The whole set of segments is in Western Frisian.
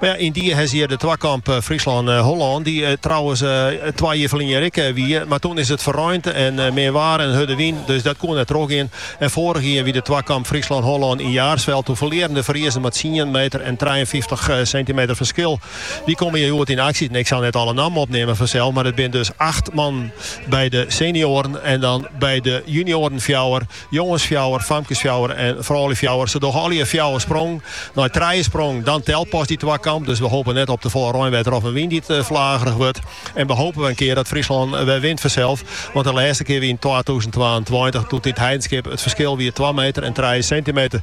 Mar ja, yndie hest hjir de twakamp Fryslân-Hollân, dy't trouwens twa jier ferline ek wie, mar toen is it ferreint en min waar en hurde wyn, dus dat koe net trochgean. En foarich jier wie de twakamp Fryslân-Hollân yn Jaarsveld, toe ferlearen de Friezen mei tsien meter en trijeentfyftich sintimeter ferskil. Dy komme hjir hjoed yn aksje, ik sil net alle nammen opneamen fansels, mar it binne dus acht mannen by de senioaren en dan by de junioaren fjouwer. Jongens fjouwer, famkes fjouwer en froulju fjouwer. Se dogge allegear fjouwer sprongen. Nei trije sprongen, dan telt pas dy twakamp. Dus we hopen net op te folle reinwetter of in wyn dy't flagerich wurdt. En we hopen wer in kear dat Fryslân wer wint fansels. Want de lêste kear wie yn twatûzen twaentweintich, doe yn It Heidenskip it ferskil wie twa meter en trije sintimeter.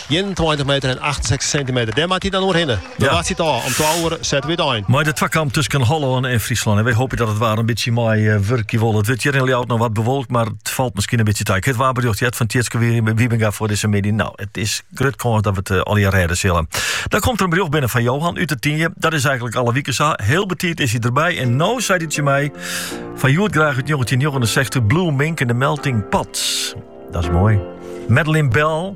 Ienentweintich meter en achtensechstich sintimeter. Dêr moat dy dan oerhinne. Dan Ja. wachtsje it ôf. Om twa oere sette we útein. Mei de twakamp tusken Hollân en Fryslân. En wy hoopje dat it waar in bytsje mei eh, wurkje wol. It wurdt hjir yn Ljouwert noch wat bewolkt, mar it falt miskien in bytsje ta. Ik hie it waarberjocht heard fan Tjitske Wie- Wiebinga foar dizze middei. Nou, it is grut kâns dat we it eh, allegear rêde sille. Dan komt der in berjocht binnen fan Johan út De Tynje. Dat is eigenlik alle wiken sa. Hiel betiid is er derby. En no sei hy tsjin my, foar hjoed graach út 1969, Blue Mink en de Melting Pot. Dat is moai. Madeline Bell,